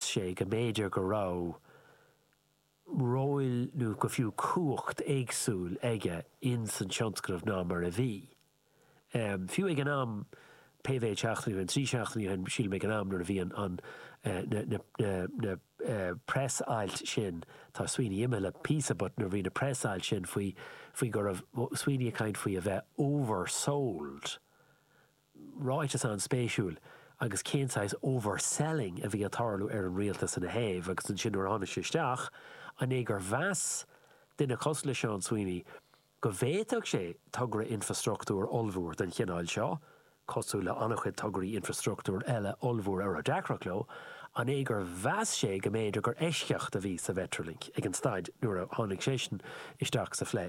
sé go mb'fhéidir go raibh róil nó go fiú cumhacht éagsúil aige in san tionscnamh ná mar a bhí. Fiú ag an am, pé méid seachtainí ó shin, trí seachtainí ó shin sílim ag an am nuair a bhí na preas-ailt sin, tá Sweeney imithe le píosa but nuair a bhí na preas-ailt sin faoi go raibh Sweeney ag caint faoi a bheith oversold, ráiteas an-spéisiúil agus cén saghas overselling a bhí ag tarlú ar an rialtas ina thaobh agus ansin nuair a tháinig sé isteach an é gur mheas duine cosúil le Seán Sweeney go bhféadfadh sé togra infreastruchtúir ollmhór den chineál seo, cosúil le an-chuid tograí infreastruchtúir eile ollmhóra a raibh deacrachtaí leo, an é gur mheas sé go mb'fhéidir gur eisceacht a bhí sa Mhetrolink ag an staid nuair a tháinig seisean isteach sa phlé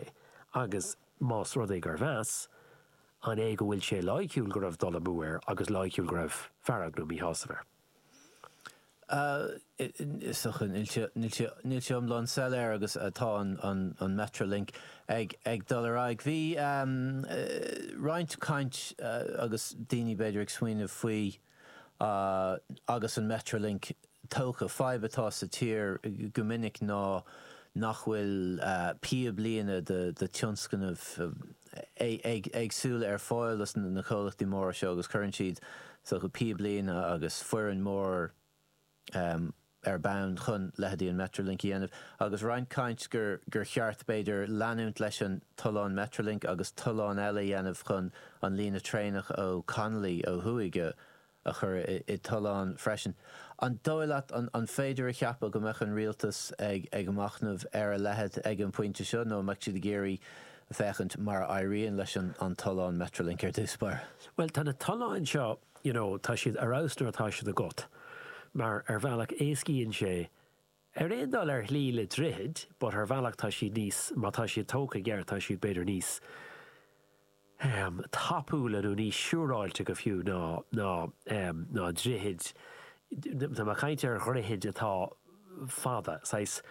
agus más rud é gur mheas An é go bhfuil sé loighciúil go raibh dul amú air agus loighciúil go raibh fearg nó míshásamh air? Níl sé iomlán soiléir agus tá an Metrolink ag dul ar aghaidh. Bhí roinnt caint agus daoine b'fhéidir ag smaoineamh faoi Agus an Metrolink tógtha, fadhb atá sa tír go minic ná nach bhfuil píoblíne de thionscnaimh éagsúla ar fáil do na comhlachtaí móra seo agus cuireann siad píoblíne agus foireann mór, um ar bun chun leithéidí an Metrolink a dhéanamh agus roinnt caint gur gur cheart b'fhéidir leanúint leis an tollán Metrolink agus tolláin eile a dhéanamh chun an líne traenach ó Connolly ó thuaidh a a chur i dtollán freisin. An dóigh leat an an féidir a cheapadh go mbeadh an Rialtas ag ag machnamh ar a leitheid ag an bpointe seo nó an mbeadh siad ag iarraidh féachaint mar a éiríonn leis an an tollán Metrolink ar dtús báire? Bhuel, tá na tolláin seo you know tá siad ar fheabhas nuair atá siad agat mar ar bhealach éascaíonn sé ar aon dul ar shlí le droichid but ar bhealach tá siad níos má tá siad tógtha i gceart tá siad b'fhéidir níos ehm tapúla nó níos siúráilte fiú ná ná ehm ná droichid tá mé ag caint ar dhroichid atá fada saghas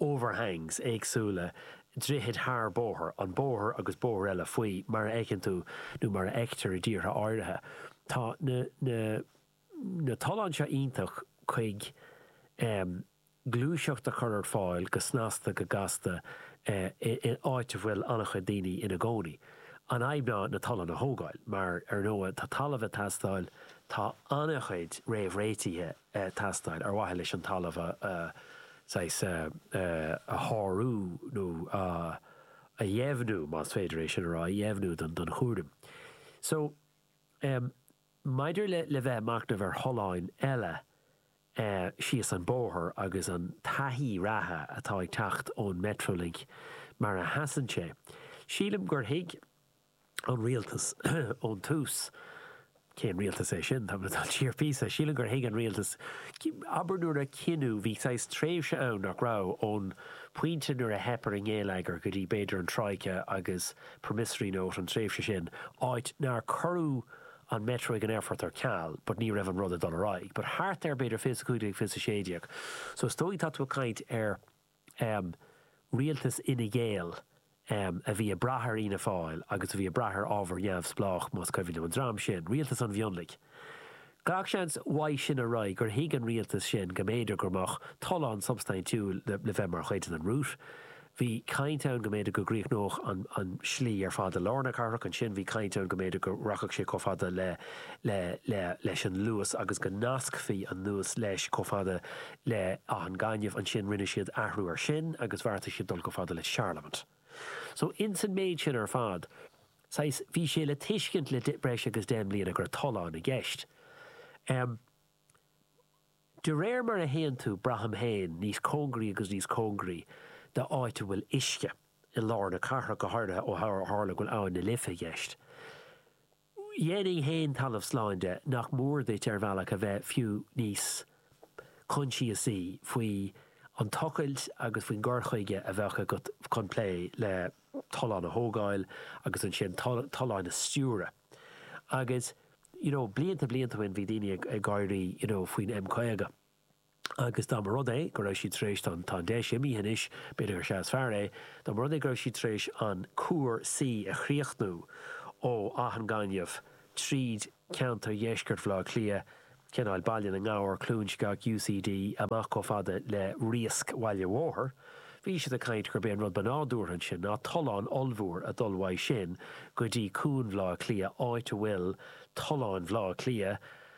overhangs, éagsúla, droichid thar bóithre, an bóthar agus bóthar eile faoi, mar a fheiceann tú nó mar a fheictear i dtíortha áirithe. Tá na na na tolláin seo iontach chuig em gluaiseacht a chur ar fáil go snasta go gasta eh in áit a bhfuil an-chuid daoine ina gcónaí. An fhadhb ná na tolláin a thógáil mar ar ndóigh tá talamh ag teastáil, tá an-chuid réamhréitithe ag teastáil ar mhaithe leis an talamh a saghas a shárú nó a dheimhniú, más féidir é sin a rá, a dheimhniú don chúram. So, maidir le bheith ag machnamh ar tholláin eile síos an bóthar agus an taithí reatha atá ag teacht ón Metrolink mar a sheasann sé, sílim gur thuig, an rialtas ón tús. Cén rialtas é sin? Tá mé ag dul siar píosa. Sílim gur thuig an rialtas, abair nuair a cinneadh, bhí saghas tréimhse ann, nach raibh, ón pointe nuair a theip ar an ngeilleagar go dtí b'fhéidir an troika agus promissory note, an tréimhse sin, áit nár cuireadh an metro ag an aerfort ar ceal but ní raibh an rud ag dul ar aghaidh. But thart ar b'fhéidir fiche 15, fiche 16. So is dóigh tá tú ag caint ar. um Rialtas Fhine Gael um a bhí ag brath ar Fhianna Fáil agus a bhí ag brath ar ábhar neamhspleách, más cuimhin liom, an dream sin, Rialtas an Mhionlaigh. Gach seans uaidh sin ar aghaidh gur thuig an Rialtas sin go mb'fhéidir go mbeadh tollán substaintiúil le bheith mar chuid den rout. Bhí caint ann go mb'fhéidir go gcríochnódh an slí ar fad i lár na cathrach, ansin bhí caint ann go mb'fhéidir go rachadh sé chomh fada le le le leis an Luas agus go nascfaí an Luas leis chomh fada le Áth an Ghainimh. Ansin rinne siad athrú ar sin agus bheartaigh siad dul chomh fada le Charlemont. So ins an méid sin ar fad, saghas, bhí sé le tuiscint le breis agus deich mbliana go raibh tollán i gceist. Em. De réir mar a théann tú, braithim féin, níos cóngaraí agus níos cóngaraí d'áit a bhfuil uisce, i lár na cathrach go háirithe ó tharla go bhfuil Abhainn na Life i gceist, dhéanfainn féin talamh slán de nach mór duit ar bhealach a bheith fiú níos coinsiasaí faoi an tochailt agus faoin gcur chuige a bheadh agat chun plé le tolláin a thógáil agus ansin tolláin a stiúradh agus you know blianta blianta ó shin bhí daoine ag gáirí you know faoin M50. agus dá mba rud é go raibh siad tar éis, now tá an deis imithe anois, b'fhéidir gur sea is fearr é, dá mba rud é go raibh siad tar éis an cuar, C a chríochnú ó Áth an Ghainimh tríd ceantar dheisceart Bhaile Átha Cliath, Ceannáil, Baile na nGabhar, Cluain Sceach, UCD, amach chomh fada le Riasc Bhaile Bhóthair, bhí siad ag caint gurb é an rud ba nádúrtha ansin ná tollán ollmhór a dhul uaidh sin go dtí Cuan Bhaile Átha Cliath, áit a bhfuil tollán Bhaile Átha Cliath,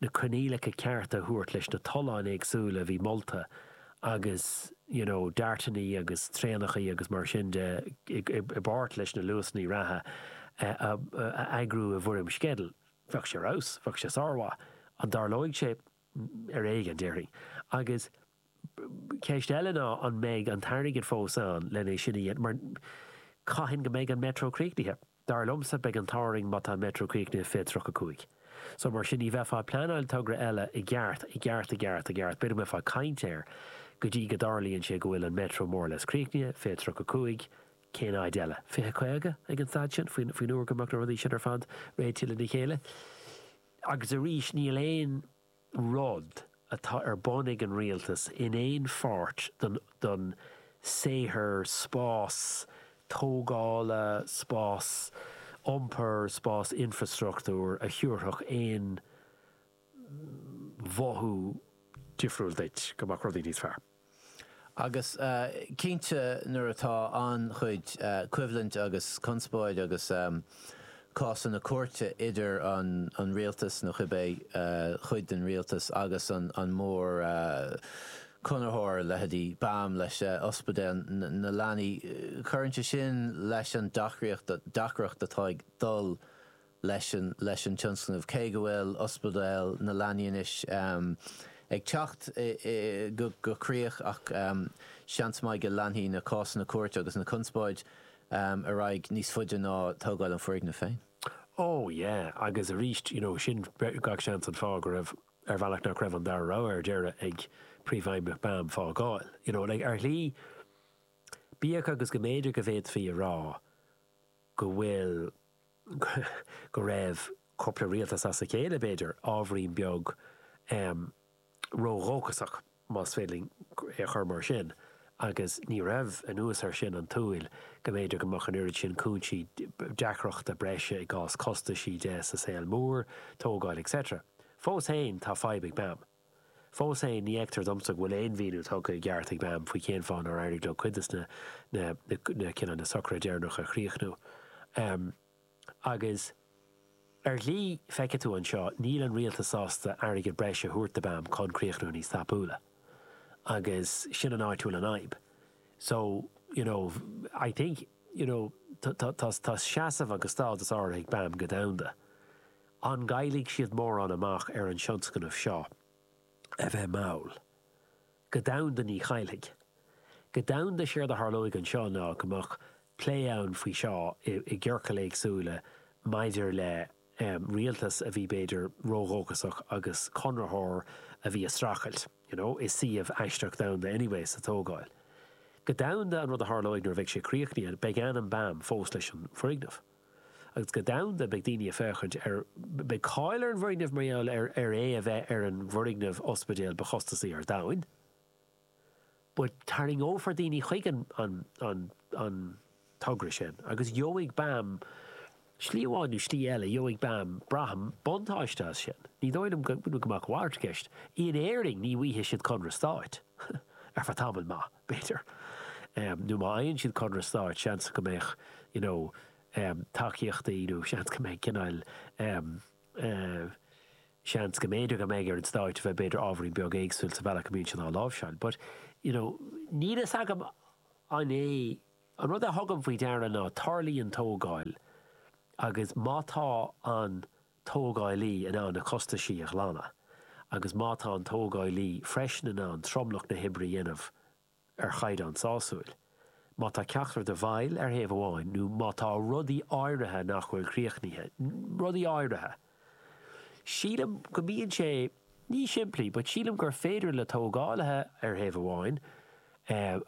na coinníollacha cearta a thabhairt leis na tolláin éagsúla a bhí molta agus you know deartainí agus traenachaí agus mar sin de i bpáirt leis na luasannaí reatha a eagrú i bhfoirm sceideal. Bheadh sé ar fheabhas. Bheadh sé sármhaith. An dtarlóidh sé? Ar éigean, déarfainn. Agus Ceist eile ná an mbeidh an t-airgead fós ann len é sin a dhéanamh mar caithfidh go mbeidh an Metro críochnaithe. Dar liomsa beidh an t-ádh orainn má tá an Metro críochnaithe 2035. So mar sin ní bheifeá ag pleanáil togra eile i gceart, i gceart, i gceart, i gceart, b'fhéidir go mbeifeá ag caint air go dtí go dtarlaíonn sé go bhfuil an Metro more or less críochnaithe 2035, cén fhad eile? Fiche, caoga ag an staid sin faoin, faoin uair go mbeadh na rudaí sin ar fad réitithe le chéile. Agus arís níl aon. rud atá ar bun ag an Rialtas in aon pháirt den saothar spáis tógála, spáis iompair, spáis infreastruchtúir a thabharfadh aon mhothú difriúil duit go mbeadh rudaí níos fearr. Agus cinnte nuair atá an-chuid coimhlint agus conspóid agus cásanna cúirte idir an rialtas, nó cibé cuid den rialtas, agus an mórchonraitheoir, leithéidí BAM leis, Ospidéal na Leanaí, cuireann sé sin leis an deacracht, deacracht atá ag dul leis an tionscnamh. Cé go bhfuil Ospidéal na Leanaí anois ag teacht go críoch ach seans maith go leanfaidh na cásanna cúirte agus na conspóid ar aghaidh níos faide ná tógáil an foirgnimh féin. Ó, yeah, agus arís, you know, sin gach seans an fáth go raibh, ar bhealach, nach raibh an dara rogha ar deireadh ag Príomhfheidhmeannach BAM fágáil. You know, like, ar shlí, bíodh agus go mb'fhéidir go bhféadfaí a rá go bhfuil, go raibh cúpla rialtas as a chéile, b'fhéidir, ábhairín beag ródhóchasach, más féidir linn é a chur mar sin, agus ní raibh, anuas air sin, an tsúil go mb'fhéidir go mbeadh an oiread sin cúinsí deacrachta breise i gcás costaisí de sa saol mór, tógáil etc. Fós fhéin, tá fadhb ag BAM. Fós fhéin, ní fheictear domsa go bhfuil aon mhíniú tugtha i gceart ag BAM faoi cén fáth nár éirigh leo cuid de na na cinneadh na socruithe deireanacha a chríochnú. Agus, ar shlí, feicfidh tú anseo, níl an rialtas sásta airgead breise a thabhairt do BAM chun críochnú níos tapúla. Agus sin an áit a bhfuil an fhadhb. So, you know, I think, you know, tá seasamh agus stádas áirithe ag BAM go domhanda. An gcaillfidh siad mórán amach ar an tionscnamh seo? A bheith mall. Go domhanda ní chaillfidh. Go domhanda séard a tharlóidh anseo ná go mbeadh plé ann faoi seo i gciorcail éagsúla maidir le rialtas a bhí b'fhéidir ródhóchasach agus conraitheoir a bhí ag streachailt you know i suíomh aisteach domhanda anyway sa tógáil. Go domhanda an rud a tharlóidh nuair a bheidh sé críochnaithe beidh ainm BAM fós leis an bhfoirgneamh. agus go domhanda, beidh daoine ag féachaint ar beidh cáil ar an bhfoirgneamh mar gheall ar ar é a bheith ar an bhfoirgneamh ospidéil ba chostasaí ar domhain but tarraingeofar daoine chuig an an an an togra sin agus gheobhaidh BAM slí amháin nó slí eile gheobhaidh BAM braithim buntáiste as sin ní dóigh liom go go mbeidh a mhalairt i gceist in Éirinn ní bhfaighidh siad conradh stáit ar feadh tamaill maith. b'fhéidir, nó má fhaigheann siad conradh stáit, seans go mbeadh you know tacaíochtaí nó seans go mbeidh cineál em eh seans go mb'fhéidir go mbeidh ar an stáit a bheith b'fhéidir ábhairín beag éagsúil sa bhealach a mbíonn sé á láimhseáil but you know níl fhios agam an é an rud a thugaim faoi deara ná tarlaíonn tógáil agus má tá an tógálaí in ann na costais a ghlanadh agus má tá an tógálaí freisin in ann tromlach na hoibre a dhéanamh ar chaighdeán sásúil. Má tá ceachtar den bheirt ar thaobh amháin nó má tá rudaí áirithe nach bhfuil críochnaithe, rudaí áirithe, sílim go mbíonn sé níos simplí but sílim gur féidir le tógálaithe ar thaobh amháin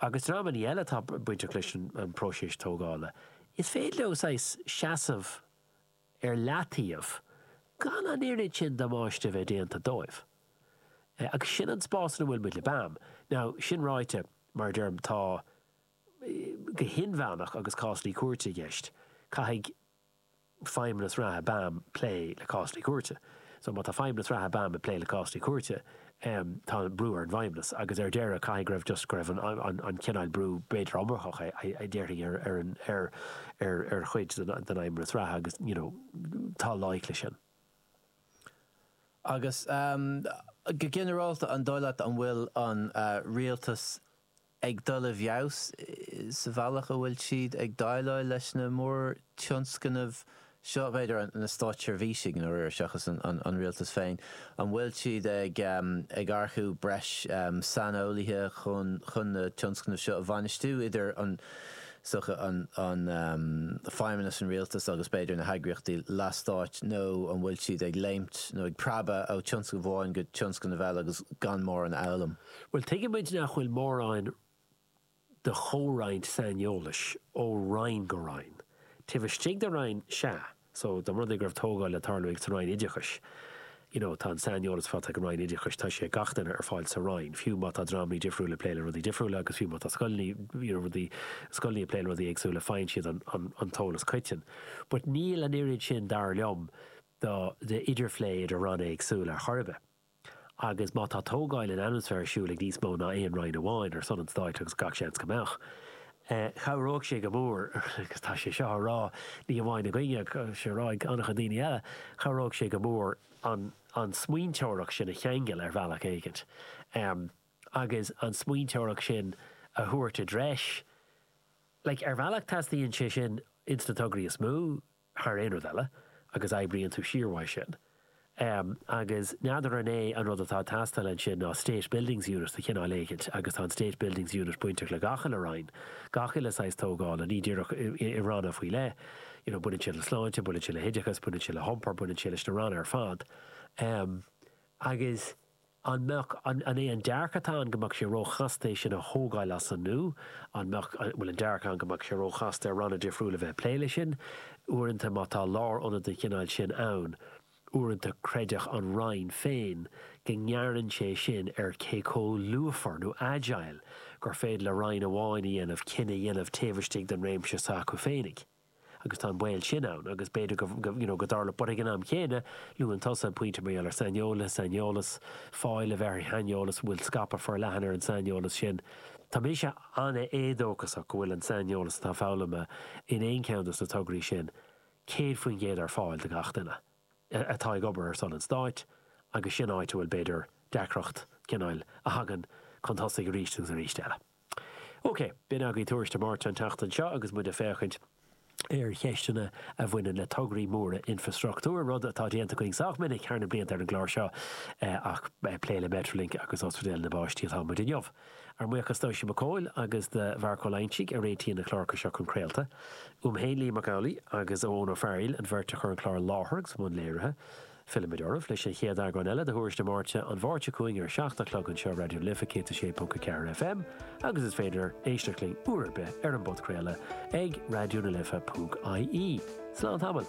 agus dreamanna eile atá bainteach leis an bpróiseas tógála, is féidir leo saghas seasamh ar leataobh gan an oiread sin damáiste a bheith déanta dóibh. Agus sin an spás ina bhfuil muid le BAM. Now, sin ráite, mar a deirim, tá go hinmheánach agus cásanna cúirte i gceist, caithfidh feidhmeannas reatha BAM plé le cásanna cúirte. So, má tá feidhmeannas reatha BAM ag plé le cásanna cúirte, em tá brú ar an bhFeidhmeannas agus ar deireadh caithfidh go raibh just go raibh an an an cineál brú b'fhéidir iomarcach a a déarfá ar ar an ar ar ar chuid den den Fheidhmeannas reatha agus you know tá loighic leis sin. Agus em go ginearálta an dóigh leat an bhfuil an eh Rialtas ag dul i bhfeabhas sa bhealach a bhfuil siad ag déileáil leis na mórtionscnaimh seo, b'fhéidir na státseirbhísigh i ndáiríre seachas an rialtas féin, an bhfuil siad ag earcú breis saineolaithe chun na tionscnaimh seo a bhainistiú, idir an feidhmeannas, an rialtas agus b'fhéidir na heagraíochtaí leathstáit, nó an bhfuil siad ag léimt nó ag preabadh ó thionscnamh amháin go tionscnamh eile agus gan mórán a fhoghlaim. Bhuel, tuigimid nach bhfuil mórán de chomhroinnt saineolais ó Roinn go Roinn. Taobh istigh de Roinn, sea, so, da mba rud é go raibh tógáil le tarlú ag sa Roinn Oideachais, you know, tá an saineolas atá ag an Roinn Oideachais, tá sé ag gach duine ar fáil sa Roinn, fiú má tá dreamanna difriúla ag plé le rudaí difriúla agus fiú má tá scoileanna, you know, rudaí, scoileanna ag plé le rudaí éagsúla, faigheann siad an, an, an t-eolas coiteann. But níl an oiread sin, dar liom, do, de idirphlé idir Ranna éagsúla ar chor ar bith. agus má tá tógáil infreastruchtúir ar siúl ag níos mó ná aon Roinn amháin ar son an Stáit, agus gach seans go mbeadh, chabhródh sé go mór, agus tá sé seo á rá ní hamháin againne ach tá sé á rá ag an-chuid daoine eile, chabhródh sé go mór an an smaointeoireacht sin a cheangal ar bhealach éigint agus an smaointeoireacht sin a thabhairt i dtreis. Like, ar bhealach teastaíonn sé sin ins na tograí is mó. thar aon rud eile, agus oibríonn tú siar uaidh sin. Agus n'fheadar an é an rud atá ag teastáil ansin ná State Buildings Unit de chineál éicint agus tá an State Buildings Unit bainteach le gach uile roinn, gach uile saghas tógála, ní díreach i ranna faoi leith, you know baineann sé le sláinte, baineann sé le hoideachas, baineann sé le hiompar, baineann sé leis na ranna ar fad. Agus. An mbeadh, an é an dearcadh atá ann go mbeadh sé ró-chasta é sin a thógáil as an nua? An mbeadh, an bhfuil an dearcadh ann go mbeadh sé ró-chasta ar ranna difriúla bheith ag plé leis sin? Uaireanta má tá lár-ionad den chineál sin ann, uaireanta creidfeadh an Roinn féin go ngearrann sé sin ar cé comh lúfar nó agile gur féidir le Roinn amháin a dhéanamh cinneadh a dhéanamh taobh istigh den réimse s'acu féinig. agus tá an baol sin ann agus b'fhéidir go, you know, go dtarlódh, but ag an am chéanna, luann tusa an pointe mar gheall ar saineolaithe, saineolas, fáil a bheith ar shaineolas, an bhfuil scaipeadh forleathan ar an saineolas sin. Tá mise an-éadóchasach go bhfuil an saineolas atá foghlamtha in aon cheann dos na tograí sin 100% ar fáil do gach duine atá ag obair ar son an Stáit agus sin áit a bhfuil b'fhéidir deacracht, cineál, a thagann chun tosaigh aríst agus aríst eile. OK, b'in agaibh Tuairisc na Máirte an tseachtain seo agus muid ag féachaint ar cheisteanna a bhaineann le tograí móra infreastruchtúir, rud atá déanta againn sách minic thar na blianta ar an gclár seo ach plé le Metrolink agus Ospidéal na bPáistí atá muid inniu. Ár mbuíochas d'Oisín Mac Cumhaill agus do Mharc Ó Loingsigh a réitíonn na cláracha seo chun craolta. Uaim féin Liam Mac Amhlaigh agus Eoin Ó Fearghail, an bheirt a chur an clár i láthair agus i mbun léirithe. Fillfimid oraibh leis an chéad eagrán eile de Thuairisc na Máirte, an Mháirt seo chugainn ar a seacht a chlog anseo Raidió na Life 106.4 FM agus is féidir éisteacht linn uair ar bith ar an bpodchraoladh ag raidionalife.ie. Slán tamall.